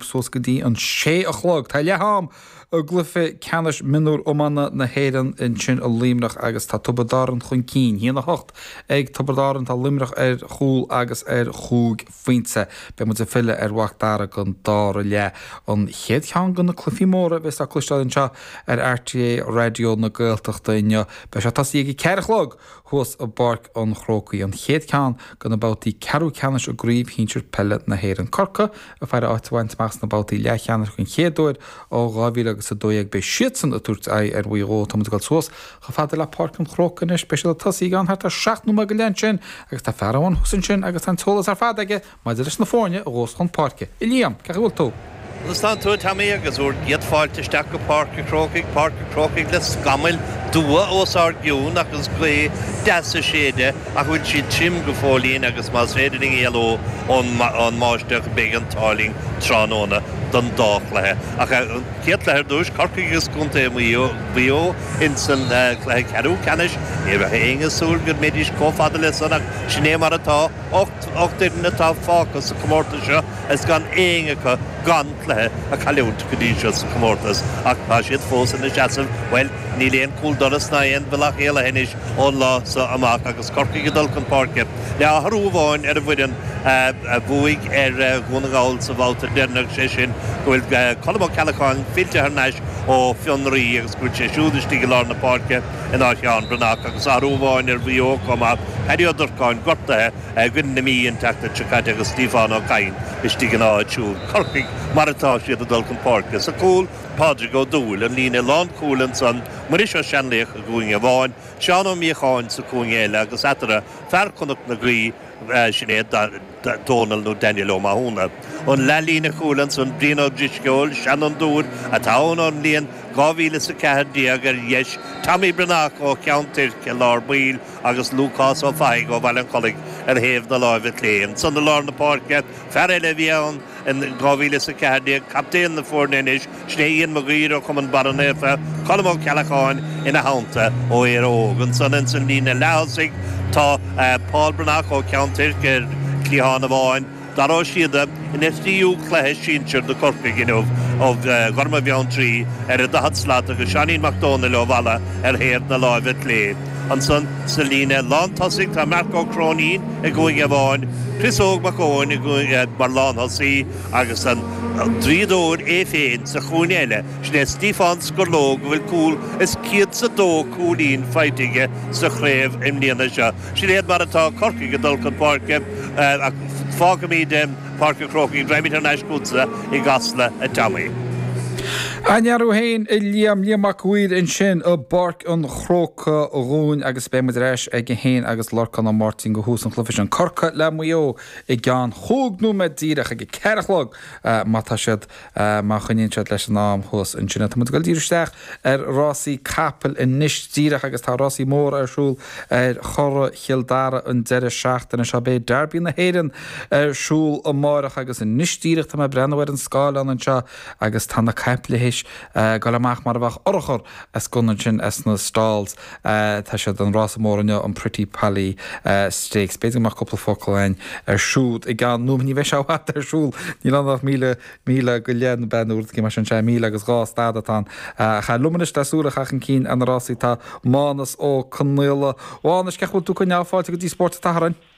suas go dtí an sé a chlog. Tá leath-am i gcluiche ceannais mionúr iomána na hÉireann ansin i Luimneach agus tá Tiobraid Árann chun cinn. hAon 8 ag Tiobraid Árann, tá Luimneach ar chúl agus ar chúig phointe. Beidh muid ag filleadh ar Mhac Dara don dara leath. An chéad cheann de na cluichí móra a bheas le cloisteáil anseo ar RTÉ Raidió na Gaeltachta inniu. Beidh sé ag tosaí ag a ceathair a chlog. thuas i bPáirc an Chrócaigh an chéad cheann de na babhtaí ceathrú ceannais i gCraobh Shinsir Peile na hÉireann. Corcaigh ag faire áit a bhaint amach sna babhtaí leathcheannais den chéad uair ó 2000 agus 12. Beidh siadsan ag tabhairt aghaidh ar Mhaigh Eo. Táimid ag dul suas chomh fada le Páirc an Chrócaigh anois. Beidh siad ag tosaí i gceann thart ar seacht nóiméad go leith ansin agus tá fear amháin thuas ansin agus tá an t-eolas ar fad aige. Maidir leis na foirne a ghabhfas chun páirce a Liam, cén chaoi a bhfuil tú. Conas tánn tú, a Tommy, agus bhur gcéad fáilte isteach go Páirc a' Chrócaigh, Páirc a' Chrócaigh le scamaill dubha os ár gcionn agus gaoth deas ag séideadh ach bhfuil siad tirim go fóillín agus más féidir linn éalú ón mbáisteach beidh an t-ádh linn tráthnóna don dá chluiche ach an chéad chluiche ar dtús, Corcaigh agus Contae Mhaigh Eo ins an chluiche ceathrú ceannais, ní bheadh éinne ag súil go mbeidís chomh fada le san ach sin é mar atá. Ocht bhfoireann atá fágtha sa chomórtas seo agus gan aon acu gan cluiche a chailliúint go dtí seo sa chomórtas ach tá siad fós ina seasamh, bhuel, níl aon chúldoras ná aon bhealach éalaithe anois ón lá seo amach agus Corcaigh ag dul chun páirce le hathrú amháin ar an bhfoireann a bhuaigh ar Dhún na nGall sa bhabhta deireanach, sé sin go bhfuil Colm Ó Ceallacháin fillte thar n-ais ó fionraí agus go bhfuil sé siúd istigh i lár na páirce. In áit Sheán Breathnach agus athrú amháin ar Mhaigh Eo chomh maith, Paddy Ó Durcáin gortaithe i gcoinne na Mí an tseachtain seo caite agus Stiofán Ó Cadhain istigh ina áit siúd. Corcaigh mar atá siad ag dul chun páirce. Sa gcúl, Pádraig Ó Dúill, an líne lánchúil ansan, Muiris Ó Seanlaoich i gcúinne amháin, Seán Ó Míocháin sa chúinne eile agus eatarthu, fear Chnoc na Graí, sin é Dónall nó Daniel Ó Mathúna. An leathlíne chúil ansan, Brian Ó Drisceoil, seanfhondúir atá ann ón mbliain 2000 is 14, ar dheis, Tommy Breathnach ó Cheann Tuirc i lár baill agus Lúcás Ó Fathaigh ó Bhaile an Chollaigh ar thaobh na láimhe clé. Ansan i lár na páirce, fear eile a bhí ann in 2000 is 14, captaen na foirne anois, Sin é Iain Mag Uidhir ó Chumann Barra Naofa, Colm Ó Ceallacháin ina theannta ó Éire Óg. Ansan ins an líne leath-thosaigh tá Paul Breathnach ó Cheann Tuirc ar chliathán amháin. Dara Ó Síoda ina thríú cluiche sinsir do Chorcaigh inniu ó Ghorma Bheanntraí ar an daichead slat agus Seáinín Mac Dónaill ó Mhala ar thaobh na láimhe clé. Ansan sa líne lán-tosaigh tá Mark Ó Cróinín i gcúinne amháin, Chris Óg Mac Eoin mar lán-thosaí, Agus an draíodóir é féin sa chúinne eile, sin é Stiofán Scurlóg a bhfuil cúl is céad 's a dó cúilín faighte aige sa chraobh i mbliana. Seo, sin iad mar atá Corcaigh ag dul chun páirce ach fágfaimid Páirc an Chrócaigh, raghaimid thar n-ais chugatsa i gCasla, a Tommy. An-fhear thú féin, a Liam, Liam Mac a' Mhaoir ansin i bPáirc an Chrócaigh dhúinn agus beidh muid ar ais aige féin agus Lorcán Ó Máirtín do thús an chluiche sin, Corcaigh le Maigh Eo. i gceann chúig nóiméad díreach, ag a ceathair a chlog, má tá siad, má choinníonn siad leis an am thuas. Ansin, tá muid ag dul díreach isteach ar rásaí capaill anois díreach agus tá rásaí móra ar siúl ar Churrach Chill Dara an deireadh seachtaine seo. Beidh Derby na hÉireann ar siúl amárach agus anois díreach tá mé ag breathnú ar an scáileán anseo agus tá na caiple tar éis dul amach mar a bheadh urchar as gunna ansin as na stalls. Tá sé, an rása mór inniu, an Pretty Polly Stakes. B'fhéidir go mbeadh cúpla focal againn air siúd i gceann nóiméad, ní bheidh sé i bhfad ar siúl. Níl ann ach míle, míle go leith ann, b'fhéidir, nó rud eicínt mar sin. Sea, míle agus dhá staid atá ann. Ach liom anois le súil a chaitheamh chun cinn ar na rásaí tá Mánus Ó Conghaile. A Mhánuis, cén chaoi a bhfuil tú ag coinneáil, fáilte go dtí Spórt an tSathairn?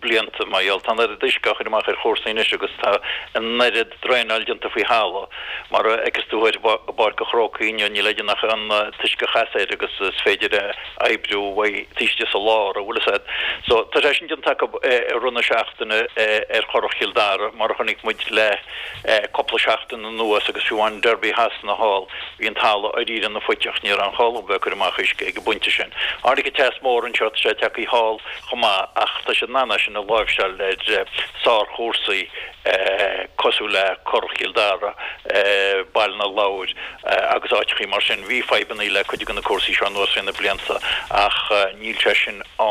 blianta mar gheall tá an oiread uisce á chur amach ar chúrsaí anois agus tá an oiread draenáil déanta faoi thalamh, mar a fheiceas tú thoir i bPáirc an Chrócaigh inniu, níl le déanamh ach an t-uisce a chasadh air agus is féidir a oibriú uaidh taobh istigh sa lár, an bhfuil fhios agat. So, tá sé sin déanta acu i rith na seachtaine ar Churrach Chill Dara, mar a chonaic muid le cúpla seachtain anuas agus fiú amháin Derby Shasana thall, bhí an talamh dháiríre ina phuiteach, ní raibh aon chall dóibh a bheith ag cur amach uisce ag an bpointe sin. Tháinig an teas mór anseo, tá sé tagtha thall. chomh maith ach tá siad in ann é sin a láimhseáil ar sárchúrsaí cosúil le Currach Chill Dara, Baile na Lobhar agus áiteachaí mar sin. Bhí fadhbannaí le cuid de na cúrsaí seo anuas thrí na blianta ach níl sé sin ann.